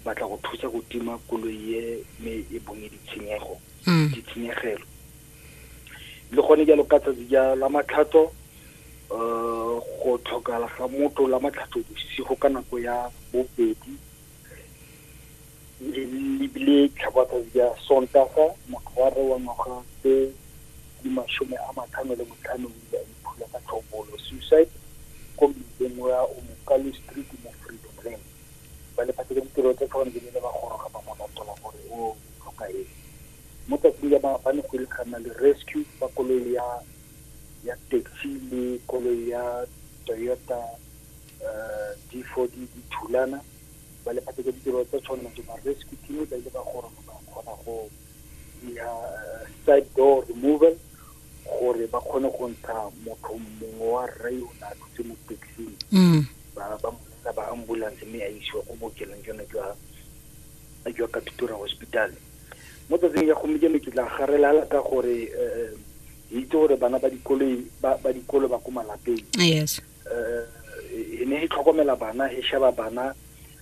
batla go thusa go tima koloi ye me e bonye ditshenyego mm. ditshenyegelo le gone jalo ka tsatsi ja la matlhatso um go tlhokala ga motho la matlhatso bosigo ka nako ya bobedi lebile tlhabatsatsi ja sontaga motho wa re wa ngwaga tse di masome a matlhano le motlhano ya iphula ka tlhobolo suicide ko mmileng wa omokalo street mo freedom land ba lephata la ditirelo tsa tlhokomelo ba ne ba goroga ba mo latola gore o tlhoka eng mo tsatsing ya maabane go ile ga nna le rescue ba koloi ya ya taxi le koloi ya toyota um d four d dithulana ba lephata la ditirelo tsa tshwanelo tse ba rescue team ba ile ba goroga ba kgona go ya side door removal gore ba kgone go ntsha motho mongwe wa rre o ne a thutse mo taxing ba ba ka ba ambulance mme a isiwa ko bookelong jona jwa jwa katutura hospital mo tsatsing ya gompieno ke tla garelala ka gore um ke itse gore bana ba dikoloi ba dikolo ba ko malapeng yes um e ne e tlhokomela bana e sheba bana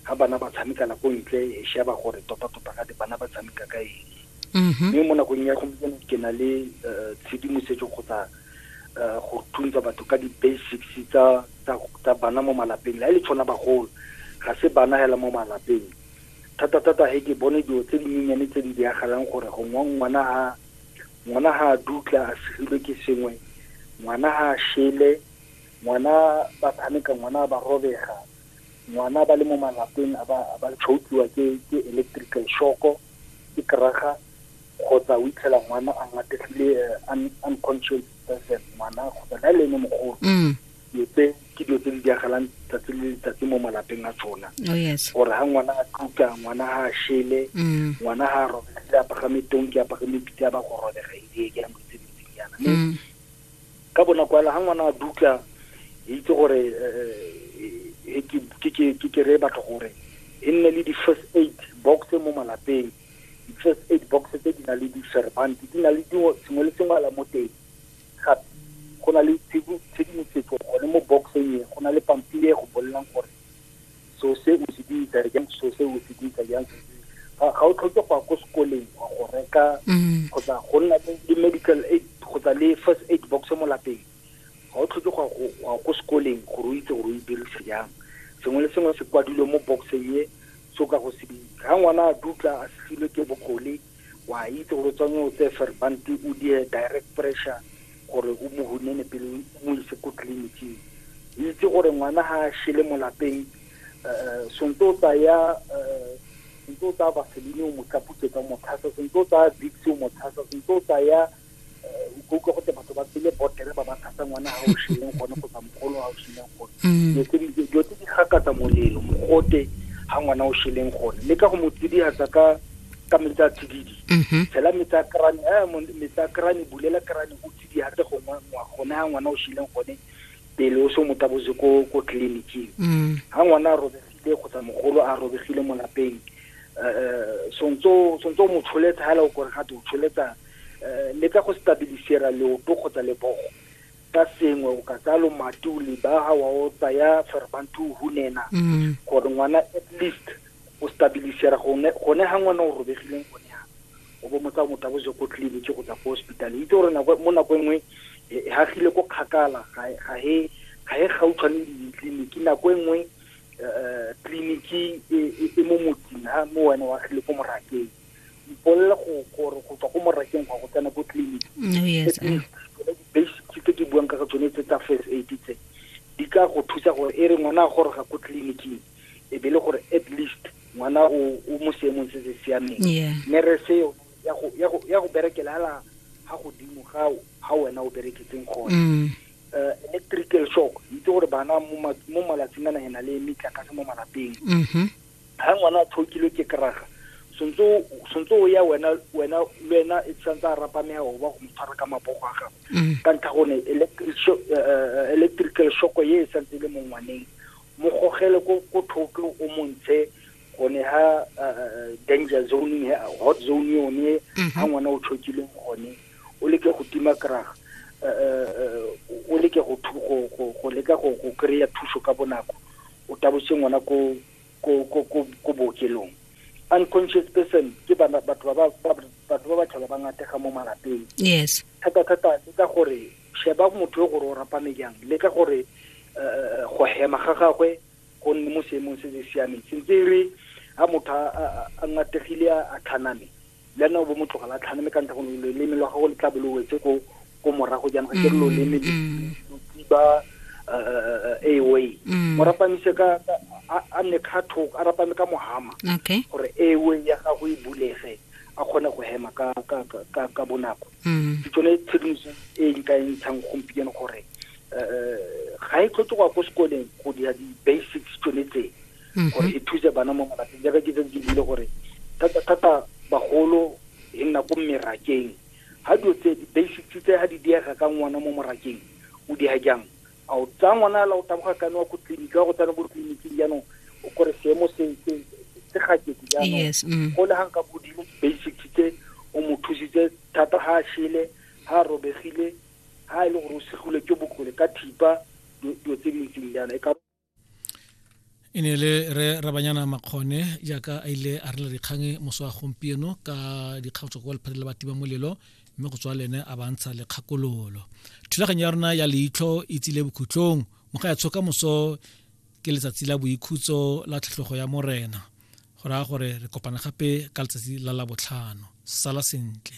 ga bana ba tshamekela ko ntle e sheba gore tota-tota ga bana ba tshameka ka eng mm-hmm. mme mo nakong ya gompieno ke na le um tshedimosetso kgotsa uh, go thuntsa batho ka di-basics tsa tsa bana mo malapeng la e le tshwana bagolo ga se bana hela mo malapeng thata-thata he ke bone dilo tse dinyenyane tse di diragalang gore gongwe ngwana ha ngwana ha a dutla a segilwe ke sengwe ngwana ha a shele ngwana ba tshameka ngwana ba robega ngwana ba le mo malapeng a ba tshoutsiwa ke electrical shoko ke keraga kgotsa o itlhela ngwana a ngategile eh, un- unconscious person ngwana kgotsa le a le ene mogolo Mm. dilo tse ke dilo tse di diagalang tsatsi le letsatsi mo malapeng a tsona Oh yes. gore ga ngwana a tluka ngwana ga a shele Mm. ngwana ga a robegile a pagame tonki a pagame pitse a ba go robega ee ke nako tse dintsi yana mme Mm. ka bonako ela ga ngwana a dutla e itse gore eh, eh, ke- ke- ke ke kere batho gore e nne le di-first aid box mo malapeng di-first aid box tse di na le di-servant di na le dingwe sengwe le sengwe ala mo teng gape go na le tshedimosetso gone mo boxeng e go na le pampiri e go bolelang gore so se o se dirisa jang so se o se dirisa jang ga o tlhoke go ya ko sekoleng wa go reka mm. kgotsa go nna le medical aid kgotsa le first aid box mo lapeng Ga o tlhoke go ya ko sekoleng gore o itse gore o e dirisa jang. Sengwe le sengwe se kwadilwe mo box-eng e, se o ka go se bitsa. Ga ngwana a dutla a setlhilwe ke bokgole, wa itse gore o tswanye o tseye ferbante o diye direct pressure gore o mo hunene pele o mo ise ko tleliniking. O itse gore ngwana ha a shele mo lapeng, sentse o tsaya vaseline o mo tlaputsetsa, o mo tshasa, sentse o tsaya vicks o mo tshasa, sentse o tsaya. o utlwa go te batho ba tsele botere ba ba thasa ngwana ga o shileng gone kgotsa mogolo ga o shileng gone mm. dilo tse di gakatsa molelo mogote ga ngwana o shileng gone le ka go mo tsidiatsa ka ka metsi a tsididi mm-hmm. tshela metsi a krane eh, metsi a krane bulela krane o tsidiatse gongwe gone ga ngwana o shileng gone pele o se mo tabotse ko ko tleliniking ga mm. ngwana a robegile kgotsa mogolo a robegile mo lapeng um eh, eh, sontse o mo tsholetsa ga ele o kore ga te o tsholetsa Eh, le ka go stabilisera leoto kgotsa lebogo ka sengwe o ka tsaya lomati o lebaga wa o tsaya ferbanti o hunena mm. gore ngwana at least o stabilisera gone ga ngwana o robegileng gone ya o bo motsa motho a boje ko tleliniki go tsa ko hospital itse gore mo nako e nngwe e, e hagile ko kgakala ga he ga he gautshwane le ditleliniki nako e nngwe eh, eh, tleliniki e, e mo motsing ha mo wena wa gile ko morakeng mpolele go gore go tswa ko morakeng gwa go tsena ko clinic oh, yes eh. basic tse ke buang ka tsone tse tsa first aid tse di ka go thusa gore e re ngwana a goroga ko tleliniking e be le gore at least ngwana o mo seemong se se siameng mme re se ya go berekela ala ga godimo ga ga wena o bereketseng gone mm. eh, electrical shock itse gore bana mo malatsing a nagena le metlakase mo malapeng mm-hmm. ha ngwana a thokilwe ke kraga sontse o ya wena wena le wena e tshwanetse a rapamea o ba go mo tshwara ka mapogo a gago mm. ka ntlha gone eh, eh, electrical shoko ye e santse e le mo ngwaneng mo gogele ko thoke o montshe gone ha eh, danger zone hot zone yone ha mm-hmm. ngwana o tshokileng gone o leke go tima kraga o leke go leka go kry-a thuso ka bonako o tabotse ngwana ko ko ko ko ko bookelong unconscious person ke bana batho ba ba batho ba ba tlhola ba ngatega mo malapeng yes thata thata le ka gore sheba motho yo gore o rapame jang le ka gore eh, go hema ga gagwe go nne mo seemong se se siameng sentse e re ga motho a- a a ngategile a a tlhaname le ena o bo mo tlogela tlhano mme ka ntlha gone loleme lwa gago le tla bo lo wetse ko ko morago jaanong ga ke re loleme ba airway mo rapamise ka a nne kga thoko a rapame ka mohama gore airway ya gago e bulege a kgone go hema ka ka ka ka bonako ke tsone tshedimoso e nka e ntshang gompieno gore ga e tlhoke go ya ko sekoleng go dira di-basics tsone tse mhm. gore e thuse bana mo malapeng jaaka ke tsetse ke buile gore thata-thata bagolo e nna ko merakeng ga dilo tse di-basics tse ga di diega ka ngwana mo morakeng o diega jang a o tsaya ngwana la o taboga kane wa ko tleliniki wa go tsena ko tleliniking jaanong o kore seemo se gakete jaanong mm. go le gang ka bodimo basics tse o mo thusitse thata ga a shele ga a robegile ga e le gore o segile ke bokole ka thipa dilo tse di ntseng jaana e ka e ne le re rabanyana makgone jaaka a ile a rela dikgang moso wa gompieno ka dikgang tswa kwa lephate la batima molelo mme go tswa lene a bantsha lekgakololo thulaganyo ya rona ya leitlho e tsile bokhutlong mo ga ya tshoka moso ke letsatsi la boikhutso la tlhatlhogo ya morena go raya gore re kopana gape ka letsatsi la labotlhano sala sentle